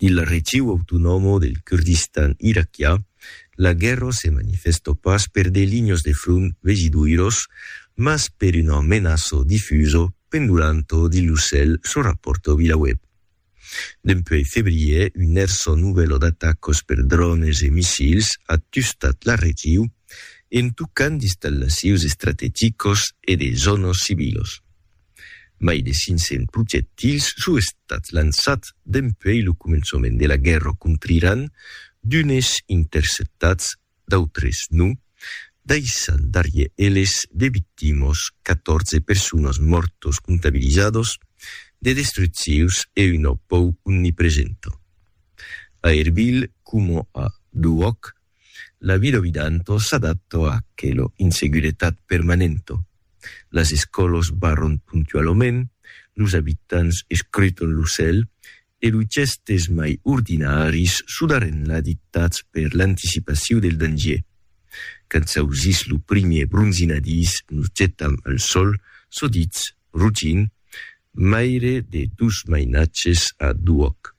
Dins la region autonòma del Kurdistan iraquià, la guèrra se manifèsta pas per de linhas de front vegidoiras, mas per una menaça difusa, pendolanta dins lo cèl, çò rapòrta Vilaweb. Dempuèi febrièr, una hèrsa novèla d'atacas per drònes e missils a tustat la region, en tocant d'installacions estrategicas e de zònas civilas. Mai de 500 projectils son estats lançats dempuèi lo començament de la guèrra contra Iran, d'unes interceptats, d'autres non, daissant darrièr eles de victimas, 14 personas mòrtas comptabilizadas, de destruccions e una pòur omnipresenta. A Erbil, coma a Duhòc, La vilovidanto s'adatto a aquelo inseguretat permanento. Las escòlos barron puntualoment, los abitants escruton lo cèl e los gèstes mai ordinaris sudarren la dictats per l'anticipaciu del dangier. Quand s'ausís lo primier bronzinadís nos getam al sòl, sodits, rugint, maire de dos mainatges a d'uòc.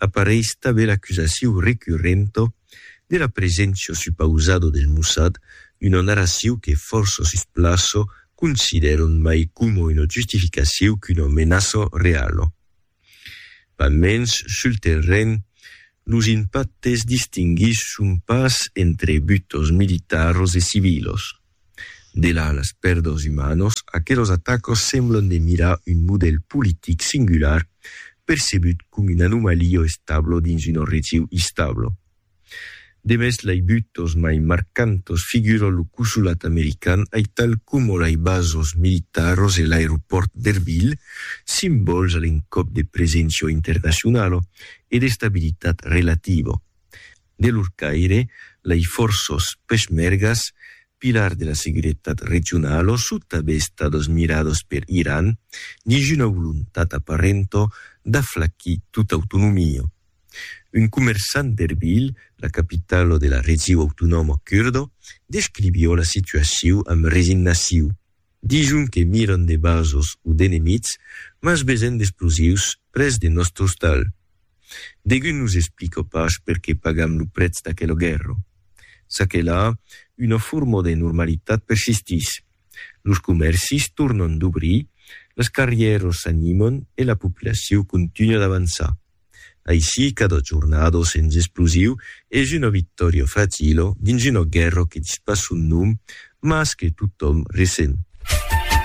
apareis tanben l'acusaciu recurrenta de la preséncia supausada del Mossad d'una narraciu que fòrça sus plaça considèran mai coma una justificaciu qu'una menaça reala. Pas mens, sul terren, los impactes distinguís son pas entre butas militaras e civilas. Delà las pèrdas umanas, aquelos atacas semblan de mirar un modèl politic singular percebut com una anomalia establa dins una region instabla. Demest lai butas mai marcantas figura lo cosolat american aital coma lai basas militaras e l'aeropòrt d'Erbil, simbòls a l'encòp de preséncia internacionala e d'estabilitat relativa. De lor caire, lei fòrços peshmergas, pilars de la seguretat regionala son tanben estados mirados per Iran dins una volontat aparenta d'aflacir tota autonomia. Un comerçant d'Erbil, la capitala de la region autonòma curda, descrivió la situacion amb resignacion. Dison que miran de basos o d'enemits, mas vesen d'explosius près de nòstre ostal. Degun nos explica pas perqué pagam lo prètz d'aquela guèrra. Ça que la, una forma de normalitat persistís. Los comèrcis tornan d'obrir, las carrièras s'animan e la populacion continua d'avançar. Aicí, cada jornado sens explosiu es una victòria fratilo dins una guèrra que dispason nom mas que totòm resen.